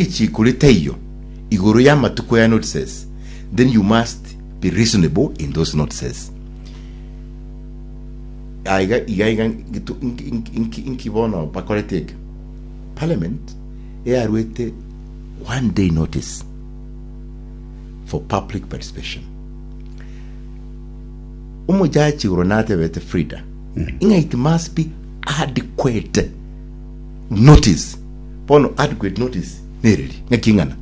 Echikure taiyo igoro y'amatuko ya notices, then you must be reasonable in those notices. Aiga iga iga ngitu- nki- nki- nki- nki bono bakorete eke. Parliament earuete one day notice for public participation. Omojaji igoro natebete Frida, ing'a it must be adequate. Notice, Bono adequate notice nereri? Ng'aki ing'ana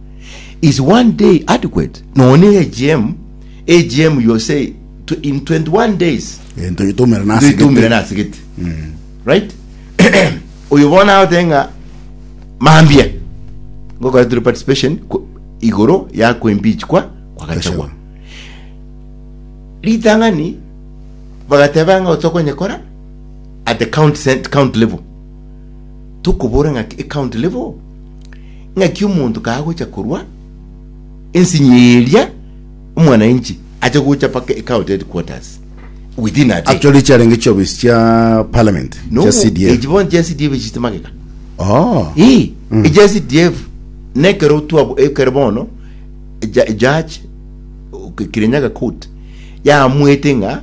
is one day adequate? Nonya ne AGM, AGM you say tw- in 21 days Gento gitumera na ase ndoitumire gete. nase gete right oyo bono agote ng'a mambia ngokoretire participation ku- igoro ya kuimpeach kwa kwa gachagua ritang'ani bagateba ng'a otokonyekora at the count, cent- count level tokobora ng'aki ecounty level, ng'aki omonto kagocha korwa ensinye eria omwananchi ache gocha mpaka ecounty headquarters within a day. Actually chiarenge chiofisi chia parliament chia Nobu CDF. echi bono chia CDF echichite magega Oh. Ii, echa CDF nekero twabo ekero bono ja- judge o- Kirinyaga court yaamwete ng'a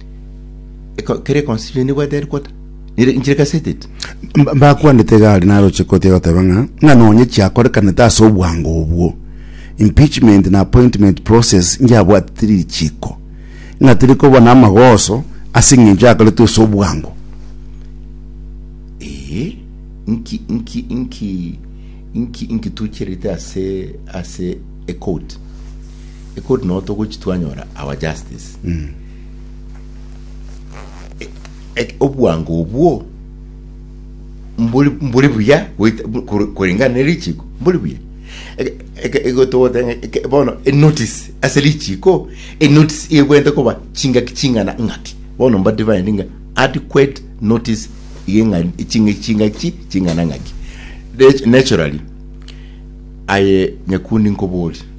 Eko- kere conciliation ebwate ere kota nere inchire kasetete Mba- mbakwanete gari naroche koti egoteba ng'a ng'a nonye chiakorekanete ase obwango obwo impeachment na appointment process ngiabwatete richiko ng'a teri koba na amagoso ase eng'encho yakoretwe ase obwango ee nki nki nki nki nkitucherete ase ase ekoti Ekori nao togochi twanyora our justice. E- e- Obwango obwo mbori mbori buya goita- bu- kor- korengana ne richiko mbori buya Eke- eke- egotogotenge eke- bono enotice ase richiko enotice egwete koba chingaki ching'ana ng'aki bono mba defined ng'a adequate notice yeng'a chinga chingaki ching'ana ng'aki Nat- naturally aye nyakundi nkoborie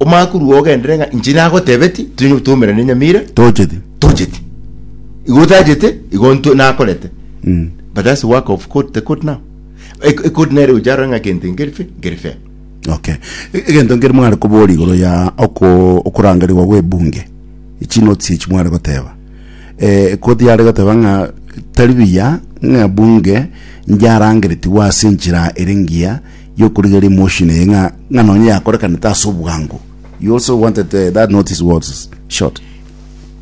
Omakuru oo ogendere ng'a inche nagotebetie, tiri tomerana na enyamira, Tochete. tochete. Igo otachete, igo nto- nakorete. Mm. But that's the work of court, the court now. Ec- Ecourt nere gocha arore ng'a kente nkeri fe- nkeri fair. Okay. E- Egento nkeri mware koboria igoro ya oko okorangerigwa gwe bunge. Chi notes echi mware goteba. Eh koti yare goteba ng'a tari biya ng'a bunge njarangeretigwe ase enchera ere ngiya y'okorigereria motion eye ng'a ng'a nonye yakorekanete ase obwango. You also wanted uh, that notice was short.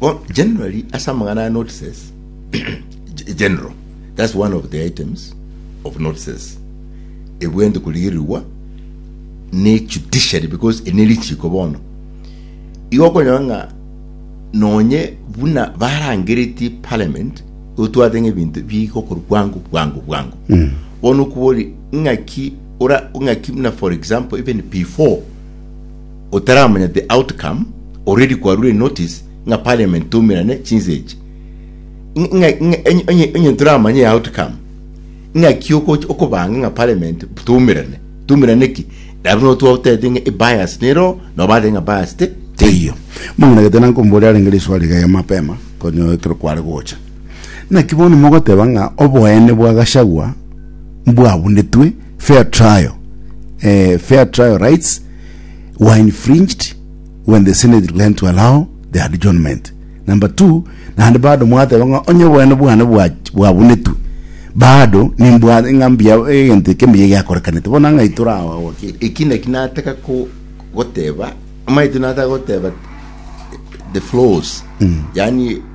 Well, generally, as amang'ana ya notices, ge- general, that's one of the items of notices. Ebwente kurigirirwa ne judiciary because ene richiko bono. Igo okonyora ng'a nonye buna barangeretie parliament otwate ng'ebinto bigokorwa bwango bwango bwango. Bono okobori Ing'aki ora ing'aki buna for example even before otaramanya the outcome already kwarure notice ng'a parliament toumerane chinsa echi Ing'a- ing'a- ing'a- enye- enye- enye toramanye ya outcome ing'aki okoch- okobanga ng'a parliament toumerane toumerane ki nabo no twatete ng'a ebias nero nobate ng'a bias te teiyo Mong'ina gete nankomboria arenge riswali gaiga mapema, konye ekero kware gocha. Naki bono mogoteba ng'a oboene bwa Gachagua mbwabunetwe, fair trial, eh, fair trial rights were infringed when the Senate declined to allow the adjournment. Number two, naende bado mwateba ng'a onye oboene bwane bwa- bwabunetwe bado nimbwa ng'a mbuya egento eke mbuya giakorekanete bono ang'ai torawa wakili eki naki nataka ko- goteba amaete nataka goteba the flaws yani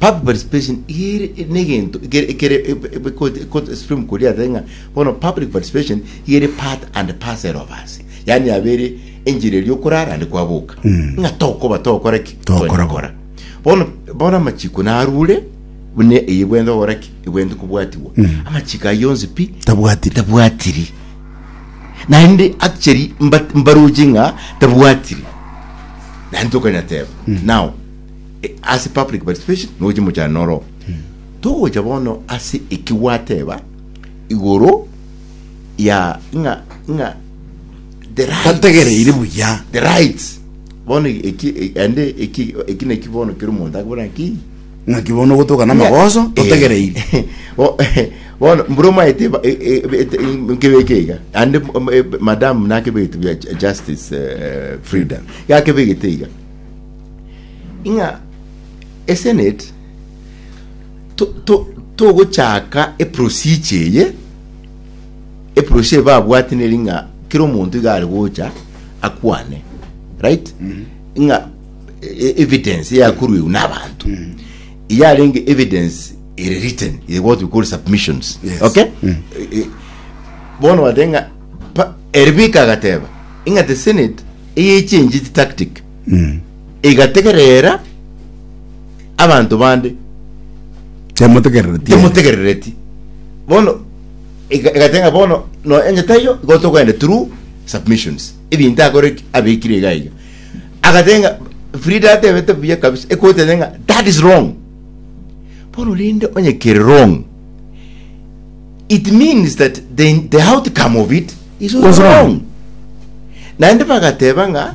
Public participation iga ere negento ekere ekere ekore extreme koria ase ng'a bono public participation iga ere part and parcel of us, yaani yaba ere enchera eria okorara naende kwaboka ng'a tokoba togokora ki? Togokora bo. Togokora. Bono bono amachiko narure buna eye bwente gokora ki? Ebwente kobwatigwa. Amachiko ayio onsi pi? Tabwatiri. Tabwatiri. Naende actually mba- mbaroche ng'a tabwatiri. Naende tokonyateba. Now, Ase public participation nogochia mochando noro oo. Togocha bono ase eki gwateba igoro ya ng'a ng'a the rights. Tategereire buya. The rights. Bono eki eki ande eki eki naki bono kero omonto akobora ng'aki Ng'aki bono ogotoka na amagoso totegereire. Bo- bono mbura omaete eba- e- e- e- ete- e- nkebeke iga ande m- m- e- madam nakebegete bia ju- justice eh, frida gakebegete iga ng'a esenate to- to- togochaka eprosiche eye eprosiche eye babwate neri ng'a kera omonto iga are gocha akwane right ng'a e- e- evidence yakorwegwa na abanto yarenge evidence ere written ere what we call submissions Yes. okay E- e- bono bateba ng'a pa- ere bika agateba ing'ate senate eyechenjete tactic Mm. igategerera abanto bande Temotegerereti. temotegerereti bono ega- egatenga bono no enye taiyo igo tokogenda through submissions ebinto akore ki abekire iga iga agatenga frida atebete buya kabisa ekotete ng'a that is wrong bono rende onye kere wrong it means that the, the outcome of it is also Was wrong. wrong naende bagateba ng'a